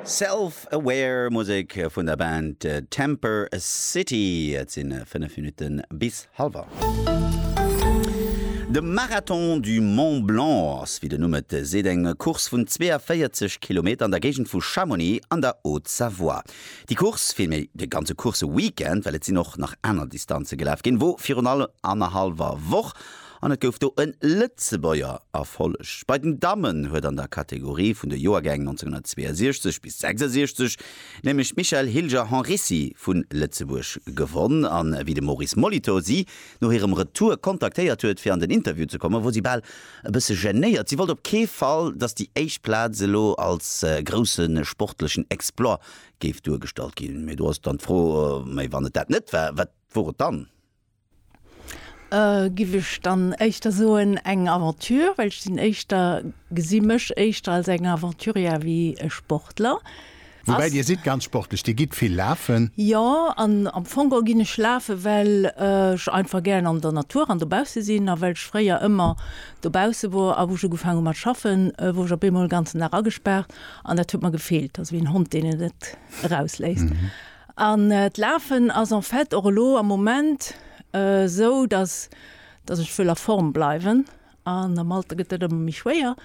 Self Aware, Musek vun der Band Temper City. Et si 5 Minutte bis hallef 8. De Marathon du Mont Blanc ass, wéi den Numm et seet, eng Course vun 42 Kilometer an der Géigend vu Chamonix an der Haute-Savoie. Déi Course, villméi de ganze Course-Weekend, well et sinn och nach aner Distanze gelaf ginn, wor virun allem annerhallwer Woch An et gouf do e Lëtzebuerger Erfolleg. Bei den Dammen huet an der Kategorie vun de Joergäng 1962 bis 66 nämlech d'Michèle Hilger-Henrissi vu Lëtzebuerg gewonn. A wéi de Maurice Molitor si no hirem Retour kontaktéiert huet, fir an den Interview ze kommen, wor si bal e bësse genéiert. Si wollt op kee Fall, datt déi éischt Plaz elo als grousse sportlechen Exploit géif duergestallt ginn. Mee do ass dann d'Fro, Mee wann et dat net war, wat wor et dann? Giff ech dann éischter soen eng Aventure, well ech sinn éischter, gesi mech éischter als eng Aventurière wéi e Sportler. Woubäi Dir sidd ganz sportlech, Dir gitt vill lafen? Jo, an am Fong o ginn ech lafen, well ech einfach gären an der Natur an dobausse sinn a well ech fréier ëmmer dobausse wor. A wou ech ugefaang hu mat schaffen, wor ech op eemol en ganzen Dag agespaart an dat huet mer gefeelt, also wéi en Hond, deen et net erausléisst. An d'Lafen ass en fait och elo am Moment esou, datt datt ech wëll a Form bleiwen. An am Alter gëtt dat ëmmer méi schwéier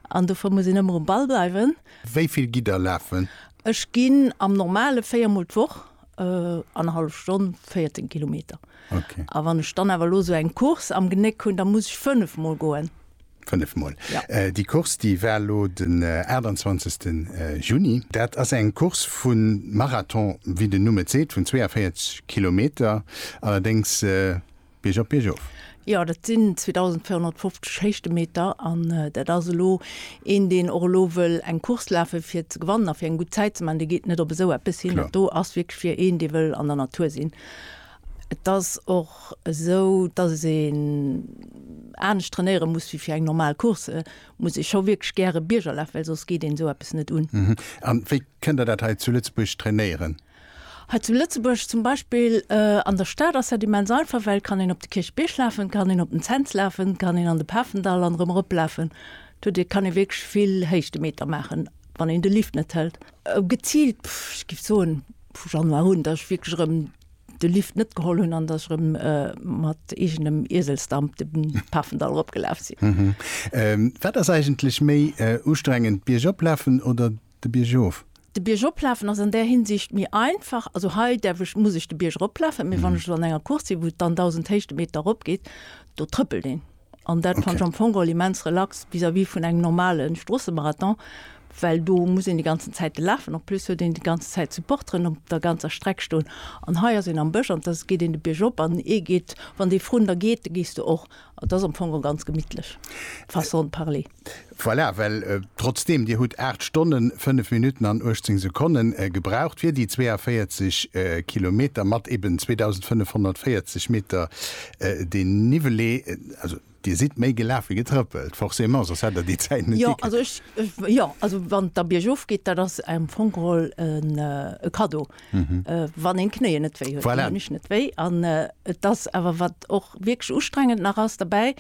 an dofir muss een ëmmer um Ball bleiwen. Wéi vill gitt Der lafen? Ech ginn am Normale véier Mol d'Woch, annerhallef Stonn, 14 Kilometer. A wann ech dann awer elo esou eng Course am Genéck hunn, da muss ech fënnef Mol goen. 5 mol ja. äh, déi Kurs déi war lo den äh, 28. Äh, Juni. Dat ass eng Kurs vun Marathon wie den Nummet seet vun 42 Kilometer allerdings äh, Bierg op Bierg of. Ja dat sinn 2450 Héichtemeter an äh, dat ass elo een deen och elo wëll eng Kurs lafe fir ze gewannen a fir eng gut Zäit ze man, de geet net op esou eppes hin. Do ass wierklech fir een dee wëll an der Natur sinn. Et ass och esou, dass een anescht trainéiere muss wéi fir eng normal Course, muss ee scho wierklech gäre Biergerlaf, well soss geet een esou eppes net un. A wéi kënnt Der dat hei zu Lëtzebuerg trainéieren? Hei zu Lëtzebuerg zum Beispill, an der Stad ass dat immens einfach, well et kann een op de Kierchbierg lafen, et kann een op den Cents lafen, et kann een an de Pafendall an erëm erop lafen. Dot e kann ee wierklech vill Héichtemeter maachen, wann een de Lift net hëlt. Geziilt, ech géif soen, vu Januar un, dass ech wierklech erëm de Lift net geholl hunn an dass ech erëm mat eegenem Ieselsdamp de Pafendall eropgelaf sinn. Wat ass eigentlech méi ustrengend, Biergop lafen oder de Bierg erof? De Bierg eroplafen ass an där Hinsicht méi einfach. Also hei däerf ech, muss ech de Bierg eroplafen, mee wann ech elo an enger Course sinn, wou et dann 1.000 Héichtemeter erop geet, do trëppelt een. An dat fannt ech am Fong geholl immens relax vis-à-vis vun engem normalen Stroosse-Marathon, well do muss een déi ganzen Zäiten lafen. En plus huet een déi ganzen Zäit Supporteren op der ganzer Streck stoen. An hei ass een am Bësch an da geet een de Bierg op an ee geet, wann dee vrun der geet, da gees du och. Dat ass am Fong geholl ganz gemittlech, façon de parler. Voilà, well trotzdeem Dir hutt 8 Stonnen, 5 Minutten an 18 Sekonnen gebraucht fir déi 42 Kilometer mat eben 2.540 Meter Dénivelé, also Dir sidd méi gelaf wéi getrëppelt, forcément, soss hätt Der déi Zäit net gikritt. Jo, also ech, jo, also wann et da biergof geet, dat ass am Fong geholl e Kaddo, wann een d'Knéien net wéi huet. Voilà. Déi hunn ech net wéi an et ass awer, wat och wierklech ustrengend nach ass derbäi,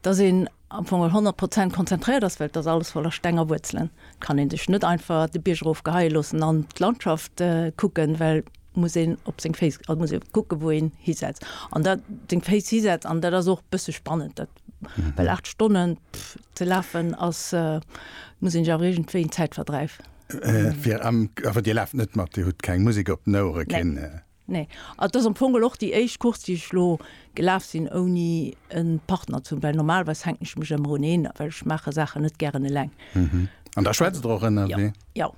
dass een am Fong al 100 Prozent konzentréiert ass, well et ass alles voller Steng a Wuerzelen, et kann ee sech net einfach de Bierg erof geheie loossen an d'Landschaft kucken, well muss een op seng Féiss, also muss ee kucke wou een hisetzt an dat seng Féiss hisetzt an dat ass och e bësse spannend dat, well 8 Stonne ze lafen ass, muss een sech awer iergendwéi en Zäitverdräif. Fir am, awer Dir laaft net mat, Dir hutt keng Musek op den Ouere, keen. Nee. An et ass am Fong geholl och déi éischt Course, déi ech elo gelaf sinn, ouni e Partner ze hunn, well normalerweis hänken ech mech ëmmer un een, well ech maache Saachen net gären eleng. An da schwätzt Der och ënnerwee? Jo.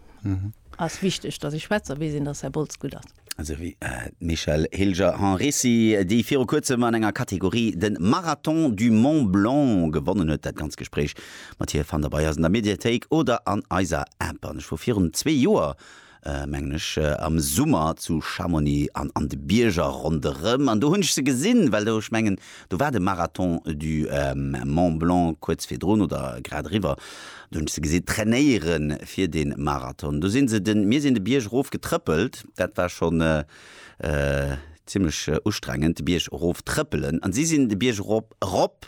Ass wichteg, datt ech schwätz a weess een, datt Här Boltz gutt ass. Esou wéi d'Michèle Hilger-Henricy, déi viru kuerzem an enger Kategorie de Marathon du Mont Blanc gewonnen huet. Dat ganzt Gespréich mat hir fannt Der bei eis an der Mediathéik oder an eiser App. An ech wor virun zwee Joer mengen ech, am Summer zu Chamonix an an de Bierger ronderëm. An do hunn ech se gesinn, well do, ech mengen, do war de Marathon du Mont Blanc kuerz virdrun oder grad eriwwer, do hunn ech se gesinn trainéiere fir de Marathon. Do si se den, mir sinn de Bierg erof getrëppelt, dat war schonn zimmlech ustrengend, de Bierg erof trëppelen, an si sinn de Bierg erop, erop,